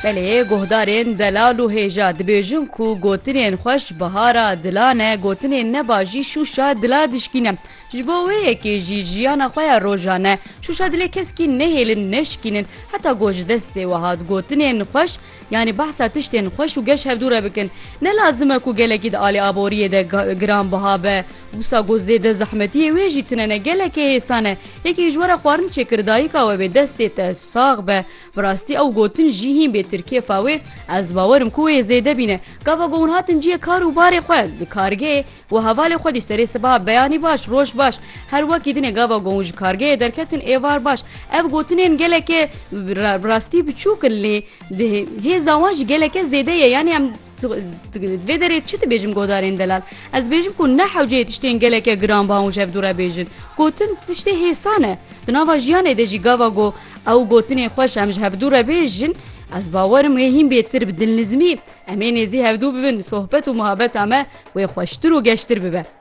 Belê guhdarên delal û hêja dibêjin ku gotinên xweş bihara dilan e, gotinên neba jî şûşa dila dişkîne. Ji bo wê yekê jî jiyana xwe ya rojan e. Şûşa dilê keskî nehêlin, neşikînin. Heta ku ji destê we hat gotinên xweş yanî behsa tiştên xweş û geş hevdû re bikin. Ne lazim e ku gelekî di alî aboriyê de giranbiha be. Wisa ku zêde zehmetî ye wê jî tune ne, gelekê hêsan e. Yekê ji we re xwarin çêkir dayika we bê destê te sax be. Bi rastî ew gotin jî hîn bê tir kêfa wê ez bawir im ku wê zêde bîne. Gava ku hûn hatin ciyê kar û barê xwe li kargehê we hevalê xwe dî serê sibaha beyanî baş roj baş her wekî dinê gava ku hûn ji kargehê derketin êvar baş ev gotinên geleke bi rastî biçûk in lê di hêza wan jî geleke zêde ye yanî em Vê derê çi dibêjim godarên delal? Ez dibêjim ku ne hewceyê tiştên geleke giranbaha û jevdû re bêjin. Gotin tiştê hêsan e. Di nava jiyanê de jî gava ku ew gotinê xwe ji em ji hevdû re bêjin, ez bawerim wê hîn bê tir bi dilnizmî. Em ê nêzî hevdû bibin, sohbet û muhabeta me wê xweştir û geştir bibe.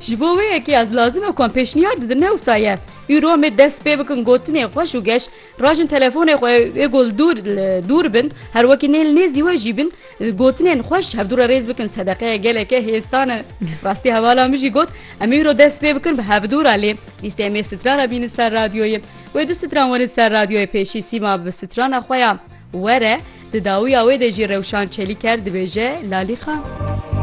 Ji bo wê yekê ez lazim e ku em pêşniyar didin ne wisa ye. Îro em ê dest pê bikin gotinê xweş û geş, rajin telefonê xwe ê ku li dûr li dûr bin, her wekî nê li nêzî we jî bin, gotinên xweş hevdû re rêz bikin sedeqeya geleke hêsan e. Rastî hevala min jî got, em îro dest pê bikin bi hevdû re lê dîsê em ê strana bînin ser radyoyê. Wê du stran werin ser radyoyê pêşî Sîma bi strana xwe ya Were di dawiya wê de jî rewşan Çelîker dibêje Lalî Xan.